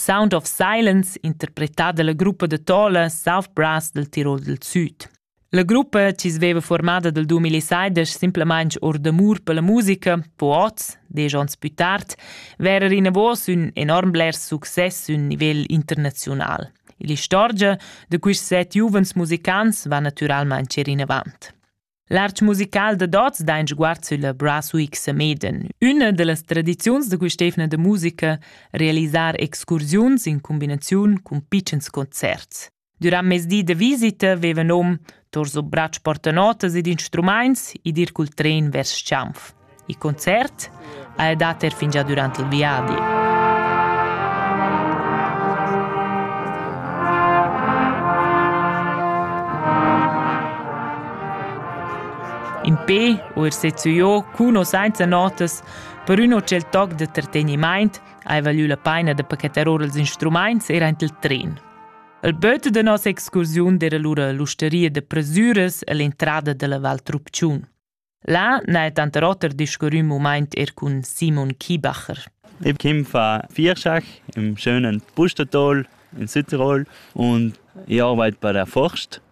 Sound of Silence, interpretà dalla gruppa da Tola South Brass del Tirol del Süd. La gruppa, chi sveva formada dal 2016 simplamaing or d'amur per la musica, po oz, desch ons pü tard, verer inavos ün enorm bler success ün nivel internaziunal. L'istorgia da quists set giuvens musicants va natüralmaing cer inavant. L'arch musical da Dots dain sguard sülla Brass Week Sameden, üna da las tradiziuns da quist'eivna da musica, realisar excursiuns in cumbinaziun cun pitschens concerts. Durant mezdi da visita veva nom tor so bracci portanotas ed instrumaints ed ir cul tren vers Chianf. Il concert ha ei dat er fingià durant il viadi. In pe u er sezzu jo cuno sainza notas per ün hotel toc da trattegnimaint ha valü la paina da pachetar or els instrumaints er aint il tren. Il böt da nossa excursiun era lura l'usteria da presüras e l'entrada dalla Val Trupciun. Là n'ha tanter oter discurrü mumaint er cun Simon Kiebacher. Ich komme von Vierschach im schönen Pustertal in Südtirol und ich arbeite bei der Forst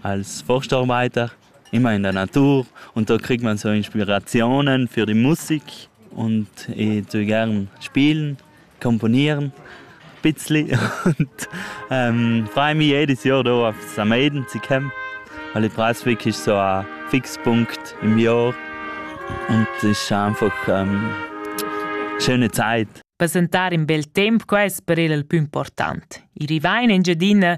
als Forstarbeiter immer in der Natur und da kriegt man so Inspirationen für die Musik und ich tue gern spielen. componieren bissli und ähm freue jedes Jahr da auf Sameden zu kommen, weil ich brauche wirklich so einen Fixpunkt im Jahr und es ist einfach ähm, schöne Zeit. Presentar in bel temp, quest per el il pü important. I rivain Engiadina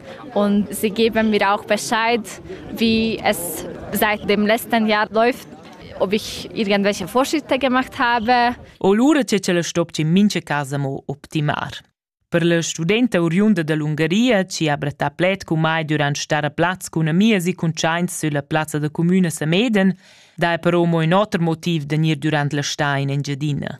und sie geben mir auch Bescheid, wie es seit dem letzten Jahr läuft ob ich irgendwelche Vorschritte gemacht habe. O lura che ce la stopci mince casa mo optimar. Per la studenta oriunda dall'Ungaria, ci ha brattà pled cu mai durant stare a plaz cun amias e cuntschaints sulla plazza da comune Sameden, dà però mo in oter motiv de gnir durant la sta in Engiadina.